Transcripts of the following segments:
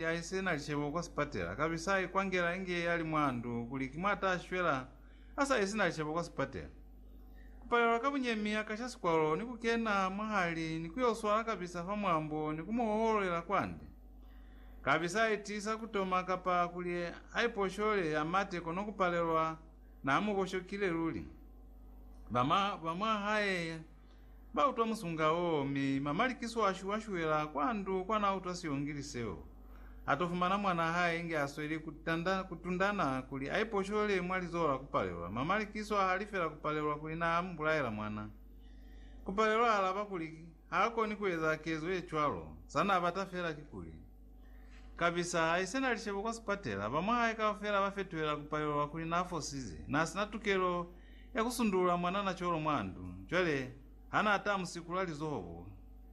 ya i si na cebo kwa sipatela, kabe sa i kwangela inge ya li mwa ndu kuli ki mwa ta shwela a sa i si na cebo kwa sipatela. Ku palelwa ka bunyemi a ka sha sikwalo ni ku kena mwahali ni ku yo swala kabisa fa mwambo ni ku mu hoholela kwande. Kabe sa i tiisa ku toma kapa kuli a iposhole, a mate kono ku palelwa na mu boshokile luli. Ba mwa hae Ba utwa musunga woo, mi mamalikiso a shuwa shuwela kwa ndu kwa na utwa silongili seo. A to fumana mwanaa hae inge a sweli ku tanda, ku tundana kuli a iposholele mwa lizoho la Kupalelwa. Mamalikiso a halifela Kupalelwa kuli na mu bulaela mwana. Kupalelwa a alaba kuli ha koni ku eza kezo ye cwalo, sa na bata fela kikuli, Kabisa haise na lishebo kwa sipatela, ba mwahae kaufela ba fetuhela ku palelwa kuli na fosize. Na sina tukelo ya ku sundulula mwanana cwalo mwa ndu. Cwale, ha na ata mu sikula lizoho bo,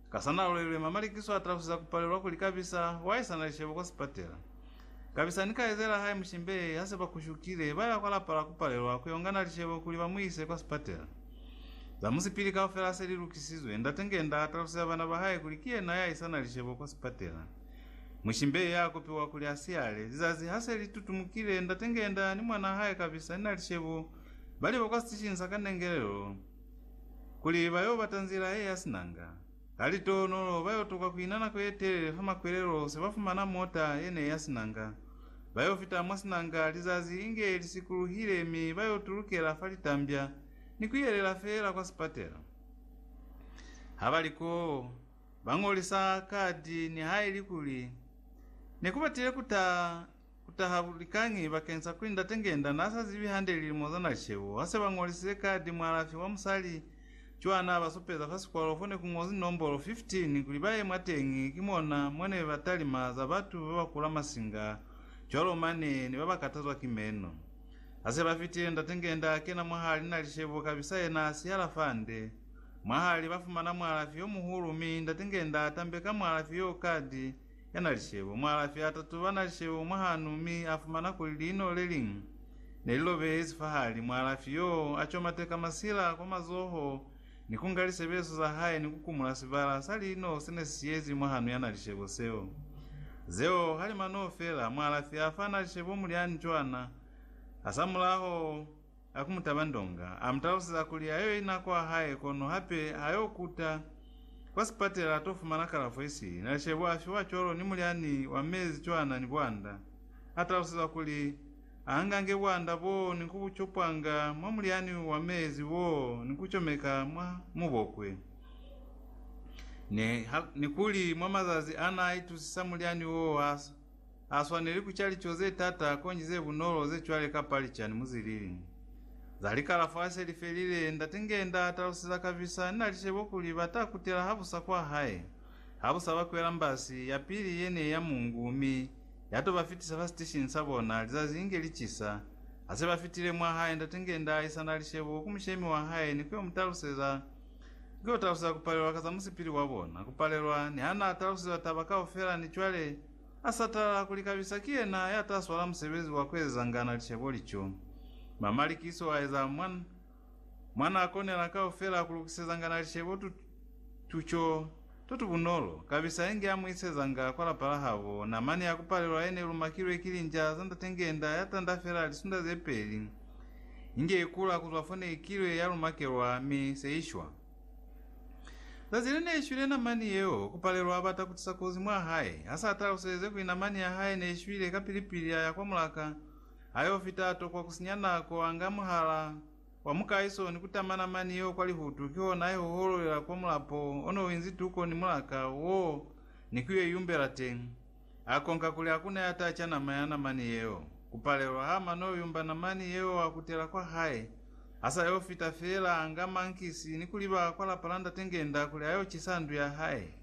ka sa na loilwe mamalikiso a talusiza ku palelwa kuli kabisa wa haisa na lishebo kwa sipatela. Kabisa ni ka ezela hae mushimbei ha se ba kushukile, ba ya kwa lapa la ku palelwa ku yo nga na lishebo kuli ba mu ise kwa sipatela. Za musipili kaufela se li lukisizwe. Ndate Ngenda a taluseza bana ba hae kuli ki yena ya isa na lishebo kwa sipatela. Mushimbei ya kopiwa kuli a siyale. Lizazi ha se li tutumukile, Ndate Ngenda ni mwanaa hae Kabisa ni Nalishebo ba liba kwa sitishingi sa kanengelelo kuli ba yo bata nzila ye ya sinanga. Ka litohonolo, ba yo tokwa ku ina nako ye telele fa makwelelo se ba fumana mota ye ne ya sinanga. Ba yo fita mwa sinanga lizazi inge li sikuluhile mi ba yo tulukela fa litambya ni ku yelela feela kwa sipatela. Ha ba li koo, ba ñolisa kadi nihaili kuli ne ku batile ku taha Ku taha likañi bakeng sa kuli Ndate Ngenda n'a sa zibi hande lilimo za n'a cheo ha se ba ñolisize kadi mualafi wa musali cwa n'a ba supeza fa sikwalo fo ne ku ñozwi nombolo 15 kuli ba ye mwa teñi ki mona mo ne ba talima za batu ba ba kula masinga cwalo mane ne ba ba katazwa ki meno. Ha se ba fitile Ndate Ngenda a kena mwahali n'a lishebo kabisa yena a sihala fande. Mwahali ba fumana mualafi yo muhulu mi Ndate Ngenda a tambe ka mualafi yo kadi Yanalisebo. Mualafi a tatoba nalisebo mwahanu mi a fumana kuli liino le liñwi ne li lobehezi fahali. Mualafi yoo a comateka masila kwa mazoho ni ku nga lisebeso za hae ni ku kumula sibala sa liino se ne si siyezi mwahanu ya nalisebo seo. Zeo ha li manoo fela, mualafi a fa nalisebo mulyani cwana hasamulaho. A ku mu taba ndonga, a mu talusiza kuli ha yo ina kwa hae kono hape ha yo kuta kwa sipatela a to fumana kalafo isili. Nalishebo a fiwa cwalo ni mulyani wa mezi cwana ni bwanda. A talusizwa kuli a angange bwanda boo ni ku bu copwanga mwa mulyani wa mezi woo ni ku comeka mwa mubokwe, ni kuli mwa mazazi a n'a itusisa mulyani woo ha Ha swaneli ku ca lico ze t'ata konji ze bunolo ze cwale ka palicani mu zilili za likala fa se li felile. Ndate Ngenda a taluseza Kavisa ni na li cebo kuli ba ta kutela habusa kwa hae ha bu sa ba kwela mbasi ya pili ye ne ya mungu mi ya to ba fitisa fa siteshini sa bona lizazi inge li cisa. Ha se ba fitile mwa hae, Ndate Ngenda a isa na li cebo ku mushemi wa hae ni ku yo mu taluseza Ki kutalusa za kupalelwa ka za musipili wa bona, kupalelwa, ni ha na talusiwa taba kaufela ni cwale a sa tala kuli kabisa ki yena ya ta swala musebezi wa kuezezangana licebo lico. Mamalikiso a eza mwa, mwa na konela kaufela ku lukisezangana licebo tu, tu co. Tutu bunolo kabisa inge amuisezanga kwa lapa lahabo, namani ya kupalelwa yene ilumakilwe ki linja za ndate ngenda yatanda fela lisunda zepeli, inge ikula kuzwa fone ikilwe yalumakelwa mi seishwa. Zazi line ishwile namani yeo, kupalelwa abata kutisa kozi mwahae, hasa ataluseze kuli namani yahae neishwile kapili-pili aya kwa mulaka, ayo fita atokwa kusinya nako anga muhala, Wa mukaiso ni kutama namani yeo kwa lihutu, kihona iho uhololela kwa mulapo one uinzi tuko ni mulaka woo ni kuyo iyumbela teñi. Akonka kuli hakuna yata ca nama ya namani yeo. Kupalelwa ha mano yumba namani yeo wa kutela kwa hae, asa yo fita feela anga mankisi ni kuliba kwa lapa la Ndate Ngenda kuli ayo cisa ndu ya hae.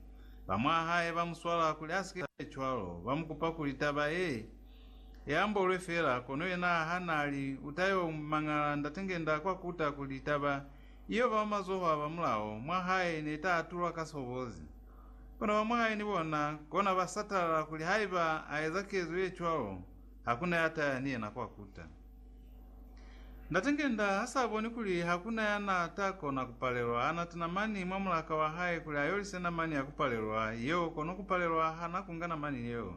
Bamwahae ba muswala kuli asike aecwalo, ba mukupa kuli taba ye Ya mbolwe fela, kono yena ha n'a li, u ta y'o mangala ndatengenda kwa kuta kuli taba iyo ba mazoho a ba mulaho mwa hae ne ta atulwa ka sobozi. Kono ba mwa hae ni bona kona ba satalala kuli haiba a eza kezo ye cwalo, ha ku na ya ta ya ni yena kwa kuta. Ndatengenda ha s'a boni kuli ha ku na ya n'a ta kona ku palelwa, ha n'a tana mani mwa mulaka wa hae kuli a yolise namani ya ku palelwa yeo, kono ku palelwa ha n'a ku nga namani yeo.